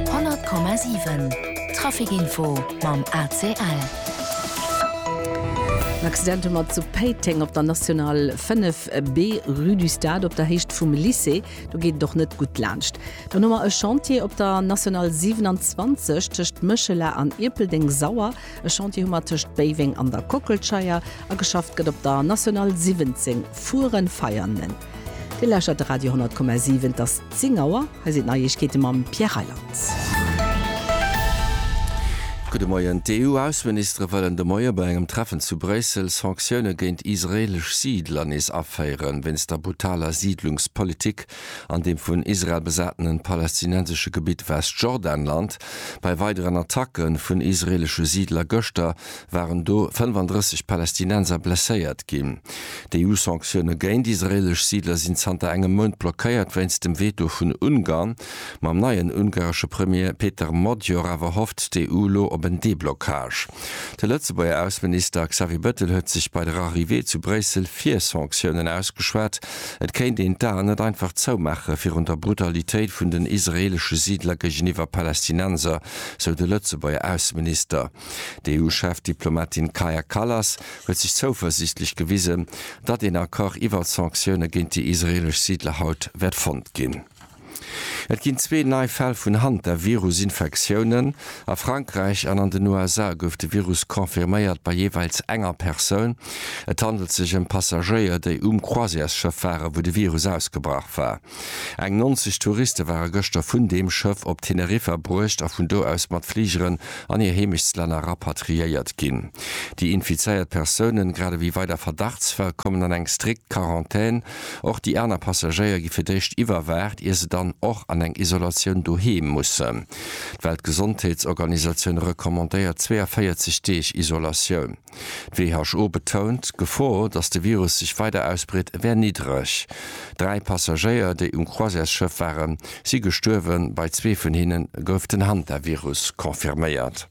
100,7 Trafic Info mam ACL. En Accident hu mer zu Péiteng op der National 5 B, Rue du Stade, op der Héicht vum Lycée. Do geet et och net gutt laanscht. Dann hu mer e Chantier op der National 27 tëscht Méchela an Ierpeldeng-Sauer. E Chantier hu mer tëscht Béiweng an der Kockelscheier. A geschafft gëtt op der National 17 Furen-Veianen. Dir lauschtert de Radio 10,7. Et ass 10 Auer. Hei sinn d'Neiegkeete mam Pierre Reyland. Gudde Moien. D'EU-Ausseministere wëllen de Moie bei engem Treffen zu Bréissel Sanktioune géint israeelesch Siidler nees aféieren, wéinst der brutaler Siidlungspolitik an deem vun Israel besatenen palästinensesche Gebitt Westjordanland. Bei weideren Attacke vun israeelesche Siidler gëschter waren do 35 Palästinenser blesséiert ginn. D'EU-Sanktioune géint israeelesch Siidler sinn zanter engem Mount blockéiert wéinst dem Veto vun Ungarn. Mam neien ungaresche Premier Peter Magyar awer hofft d'EU elo op en Deblockage. De Lëtzebuerger Ausseminister Xavier Bettel huet sech bei der Arrivée zu Bréissel fir Sanktiounen ausgeschwat. Et kéint een d'Aen net einfach zoumaache virun der Brutalitéit vun den israeelesche Siidler géigeniwwer Palästinenser, sou de Lëtzebuerger Ausseminister. D'EU-Chefdiplomatin Kaja Kallas huet sech zouversiichtlech gewisen, datt een Accord iwwert Sanktioune géint déi israeelesch Siidler haut wäert fonnt ginn. Et ginn zwee nei Fäll vun Hantavirus-Infektiounen. A Frankräich an an den USA gouf de Virus confirméiert bei jeeweils enger Persoun. Et handelt sech ëm Passagéier, déi um Croisièresschëff waren, wou de Virus ausgebrach war. Eng 90 Touriste ware gëschter vun deem Schëff op Teneriffa bruecht a vun do aus mat Fligeren an hir Heemechtslänner rapatriéiert ginn. Déi infizéiert Persounen, grad ewéi weider Verdachtsfäll, kommen an eng strikt Quarantän. Och déi aner Passagéier gi fir d'éischt iwwerwaacht, ier se dann och an eng Isolatioun doheem mussen. D'Weltgesondheetsorganisatioun recommandéiert 42 Deeg Isolatioun. D'WHO betount, d'Gefor, datt de Virus sech weider ausbreet, wär niddreg. Dräi Passagéier, déi um Croisièresschëff waren, si gestuerwen, bei zwee vun hinne gouf den Hantavirus confirméiert.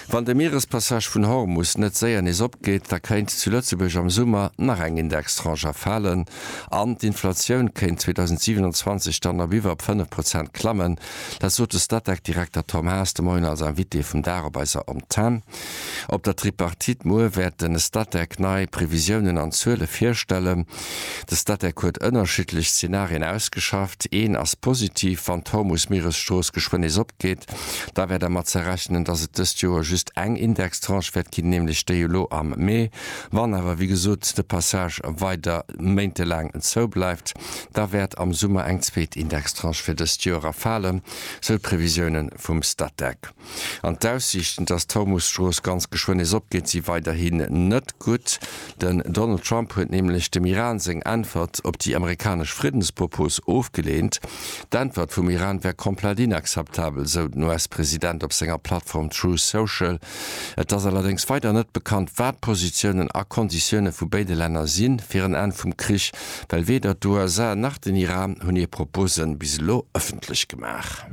Wann de Mierespassage vun Hormus net séier nees opgeet, da kéint zu Lëtzebuerg am Summer nach eng Indextranche erfalen an d'Inflatioun kéint 2027 dann op iwwer fënnef Prozent klammen. Dat sot de Statec-Direkter Tom Haas de Moien als Invité vum Dag op eiser Antenn. Op der Tripartite muer wäert de Statec nei Previsiounen an Zuele virstellen. De Statec huet ënnerschiddlech Zenarien ausgeschafft. Een ass positiv, Wann d'Hormus-Mieresstrooss geschwënn nees opgeet, da wär der mat ze rechnen, datt et dëst Joer just eng Indextranche wäert ginn, nämlech déi elo am Mee. Wann awer, wéi gesot, de Passage weider méintelaang zou bleift, da wäert am Summer eng zweet Indextranche fir dëst Joer erfalen, sou d'Previsiounen vum Statec. An d'Aussiichten, dass d'Hormuz-Strooss ganz geschwënn nees opgeet, si weiderhin net gutt. Den Donald Trump huet nämlech dem Iran seng Äntwert op déi amerikanesch Friddenspropos ofgeleent. D'Äntwert vum Iran wär komplett inakzeptabel, esou den US-President op senger Plattform Truth Social. Et ass allerdéngs weider net bekannt, wat d'Positiounen a Konditioune vu béide Länner sinn, fir en Enn vum Krich well weder d'USA nach den Iran hunn hir Propose bis elo ëffentlech gemaach.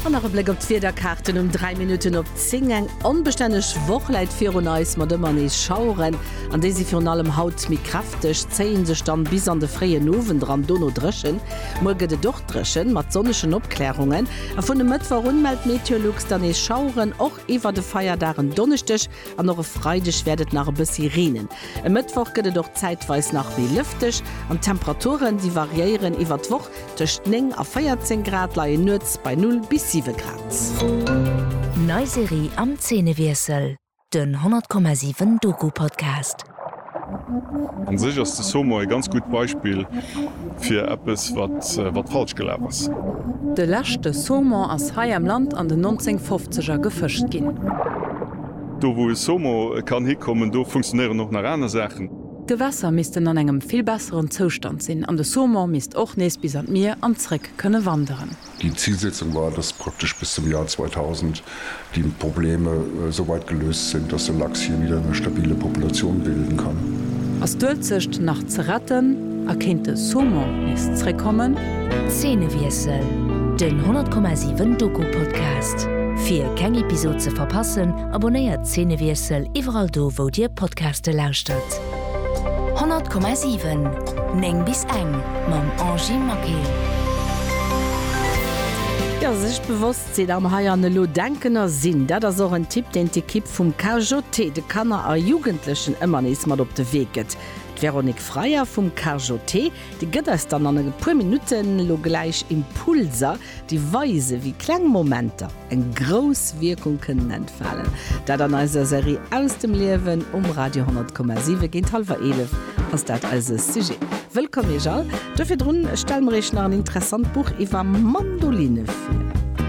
An nach e Bléck op d'Wiederkaarten um 3 Minutten op 10. Eng onbestänneg Woch läit virun eis mat ëmmer nees Schaueren an déi si virun allem haut méi kräfteg, zéie sech dann bis an de fréien Owend eran. Dono dréchen, muer gëtt et och dréchen mat sonnegen Opklärungen a vun e Mëttwoch un mellt Meteolux dann nees Schaueren. Iwwert e Feierdag, en Donneschdeg an och e Freideg wäert et nach e bëssi reenen. E Mëttwoch gëtt et och zäitweis nach méi lëfteg an d'Temperaturen, déi variéieren iwwert d'Woch, tëscht 9 a 14 Grad, leien nuets bei 0 bis 7 Grad. Nei Serie am Zeenewiessel, den 100,7 Doku-Podcast. An sech ass de Somo e ganz gutt Beispill fir eppes wat falsch gelaf ass. De leschte Saumon ass hei am Land an den 1950er gefëscht ginn. Do wou e Somo kann hikommen, do funktionéieren och nach aner Saachen. D'Gewässer missten an engem vill besseren Zoustand sinn an de Saumon misst och nees bis an d'Mier an zréck kënne wanderen. Déi Zilsetzung war, dass praktesch bis zum Joer 2000 déi Probleme esou weit geléust sinn, dass de Lachs hie wieder eng stabile Populatioun bilden kann. Ass d'Uelzecht nach ze retten a kéint de Saumon nees zréckkommen? Zeenewiessel, den 100,7 Doku-Podcast. Fir keng Episod ze verpassen, abonnéiert Zeenewiessel iwwerall do wou dir Podcaste lauschtert. 100,7 9 bis eng mam Angie Maquet. Jo, sech bewosst sinn am Hei an Elo denken a sinn, dat ass och en Tipp, deen d'Ekipp vum KJT de Kanner a Jugendlechen ëmmer nees mat op de Wee gëtt. D'Véronique Freyer vum KJT, déi gëtt eis dann an e puer Minutten elo gläich Impulser, déi weisen, wéi kleng Momenter eng grouss Wierkung kënnen entfalen, dat an eiser Serie Aus dem Liewen um Radio 100,7. Géint hallwer 11 ass dat eise Sujet. Wëllkomm Iech all! Do virdrun stelle mer Iech nach en interessant Buch iwwer Mandoline vir.